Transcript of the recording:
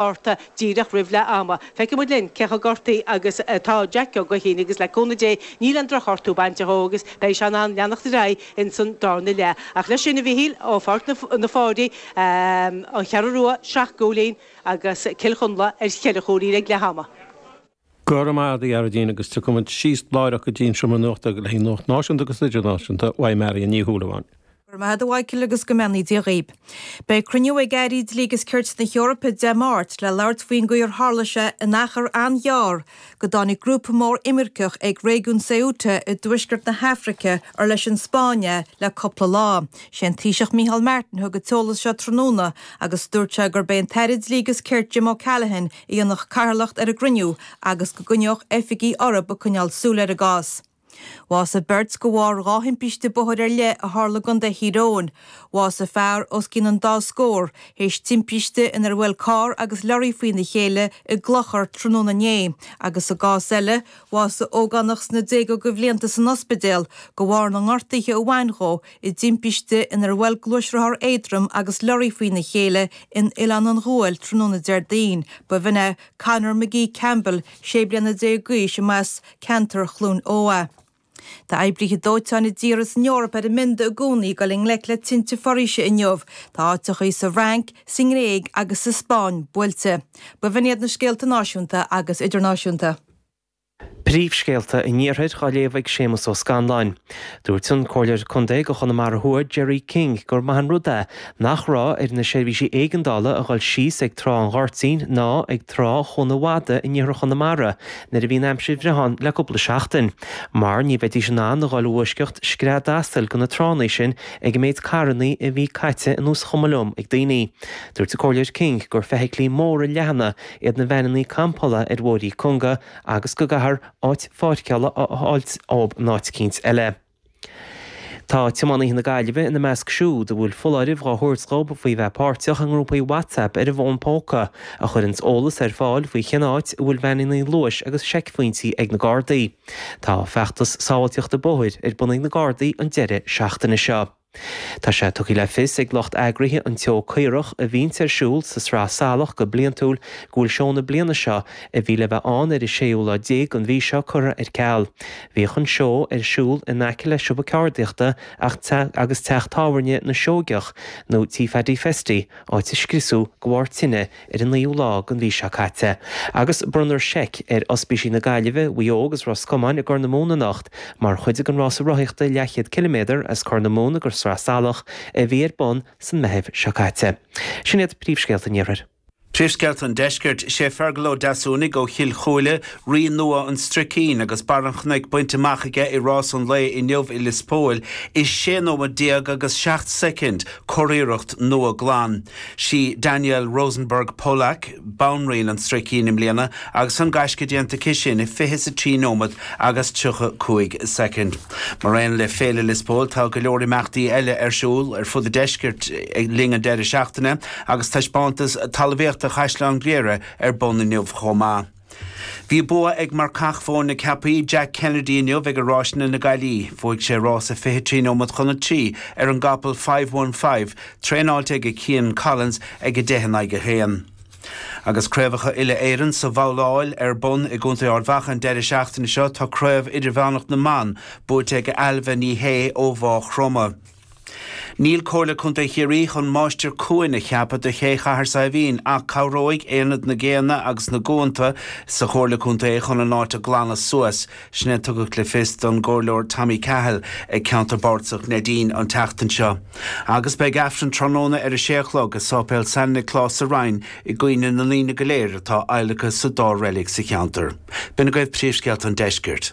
orthu díreach roimh leath ama. Feicfidh muid linn cé chomh gortaí agus atá Jackie Ó Guithín agus le cúnamh Dé níl an drochghortú bainte dhó agus beidh sé in ann leanacht ar aghaidh ins an darna leath. Ach leis sin, a Mhichíl, ó Pháirc na Pháirí, An Cheathrú Rua, Srath Gouleen agus Cill Chonla ar cheithre chúilín ag leath ama. Go raibh maith agat, a Ghearoidín, agus tiocfaimid síos láithreach go dtí an seomra nuachta le haghaidh Nuacht Náisiúnta agus Idirnáisiúnta, uaidh Máirín Ní Shúilleabháin. Go raibh maith agat, a Mhichíl, agus go mbeannaí Dia dhaoibh. Beidh cruinniú ag Airí Dlí agus Cirt na hEorpa Dé Máirt le labhairt faoin gcaoi ar tharla sé in achar an-ghearr go dtáinig grúpa mór imirceach ag réigiún Ceuta i dtuaisceart na hAfraice ar leis an Spáinn é le cúpla lá. Sé an Taoiseach Micheál Martin thug an t-eolas seo tráthnóna agus dúirt sé gurb é an tAire Dlí agus Cirt Jim O'Callaghan dhéanfadh cathaoirleacht ar an gcruinniú agus go gcoinneodh oifigigh orthu ag coinneáil súil ar an gcás. Bhásaigh beirt de bharr dhá thimpiste bóthair ar leith a tharla i gContae Thír Eoghain. Bhásaigh fear os cionn an dá scór tar éis timpiste inar bhuail carr agus leoraí faoina chéile i gClochar tráthnóna inné agus i gcás eile bhásaigh ógánach sna déaga de bhlianta san ospidéal de bharr na ngortaithe a bhain dhó i dtimpiste inar bhuail gluaisrothar éadrom agus leoraí faoina chéile in Oileán an Ghuail tráthnóna Déardaoin, ba bhin é Conor McGee Campbell, sé bliana déag d'aois, arbh as ceantar Chluain Eo dhó. Tá oibrithe dóiteáin i dtíortha san Eoraip ar a mbionda i gcónaí ag dul i ngleic le tinte foraoise inniu. Tá áiteacha sa bhFrainc, sa nGréig agus sa Spáinn buailte. Ba bhin iad na scéalta náisiúnta agus idirnáisiúnta. Príomhscéalta an Iarthair á léamh ag Séamus Ó Scanláin. Dúirt an Comhairleoir Contae do Chonamara Thuaidh Gerry King gur maith an rud é nach raibh ar na seirbhísí éigeandála a dhul síos ag Trá an Ghoirtín ná ag Trá Chuan an Mhada in iarthar Chonamara nuair a bhí an aimsir bhreá ann le cúpla seachtain mar ní bheidís in ann a dhul i bhfoisceacht scread asail de na tránna sin ag an méid carranna a bhí caite ina gciseach ann ag daoine. Dúirt an Comhairleoir King gur feithiclí móra leathana iad na veaineanna campála ar bhóithrí cúnga agus go gcaithfear áit pháirceála a fháilt dhóibh in áit eicínt eile. Tá tiománaithe na Gaillimhe ina measc siúd a bhfuil foláireamh dhá thabhairt dhób faoi bheith páirteach i ngrúpaí WhatsApp ar an bhfón póca a chuireanns eolas ar fáil faoi cén áit a bhfuil veaineanna luais agus seicphointí ag na Gardaí. Tá feachtas sábháilteachta bóthair ar bun ag na Gardaí an deireadh seachtaine seo. Tá sé tugtha le fios ag lucht eagraithe an tSeó Caorach, a bhíonn ar siúl sa tSraith Salach go bliantúil, go bhfuil seó na bliana seo, a bhí le bheith ann ar an séú lá déag den mhí seo, curtha ar ceal. Bhíodh an seó ar siúl in aice le siopa ceardaíochta agus teach tábhairne na Seoigeach, nó Tí Phaddy Festy, áit a scriosadh de bharr tine ar an 9ú lá den mhí seo caite agus bronnfar seic ar Ospísí na Gaillimhe, Mhaigh Eo agus Ros Comáin i gCorr na Móna anocht mar chuid den rása rothaíochta leathchéad ciliméadar as Corr na Móna go Sraith Salach a bhí ar bun sa Meitheamh seo caite. Sin iad príomhscéalta an Iarthair. Príomhscéalta an Deiscirt. Sé Fergal Ó Deasúnaigh ó Chill Chúile, Rí nua an Stricín agus barr an chnoic bainte amach aige i rás an lae inniu i Lios Póil i 16 nóiméad agus 7 soicind, curiarracht nua glan. Sí Danielle Rosenberg Pollack banríon an stricín i mbliana agus tá an gaisce déanta aici sin i 23 nóiméad agus 35 soicind. Mar aon le Féile Lios Póil tá go leor imeachtaí eile ar siúl ar fud an deiscirt le linn an deireadh seachtaine agus taispeántas talmhaíochta Chaisleán Ghriaire ar bun inniu chomh maith. Bhí bua ag marcach Chorca Dhuibhne, Jack Kennedy inniu ag Ráiseanna na Gaillimhe. Bhuaigh sé rás a 23 nóiméad chun a 3 ar an gcapall Five One Five, traenáilte ag Cian Collins, ag 10 in aghaidh 1. Agus Craobhacha Uile-Éireann sa bhabhláil ar bun i gContae Ard Mhacha an deireadh seachtaine seo, tá Craobh Idirmheánach na mBan buaite ag Ailbhe Ní Shé ó Mhá Chromtha. Níl Comhairle Contae Chiarraí chun máistir cuain a cheapadh do Ché Chathair Saidhbhín ach cabhróidh Aonad na gCéanna agus na gCuanta sa Chomhairle Contae chun an áit a ghlanadh suas, sin a tugadh le fios don gComhairleoir Tommy Cahill ag Ceantar Bardasach Neidín an tseachtain seo. Agus beidh Aifreann tráthnóna ar a sé a chlog i Séipéal San Nioclás sa Rinn i gcuimhne na ndaoine go léir atá adhlactha sa dá reilig sa cheantar. B'in agaibh príomhscéalta an deiscirt.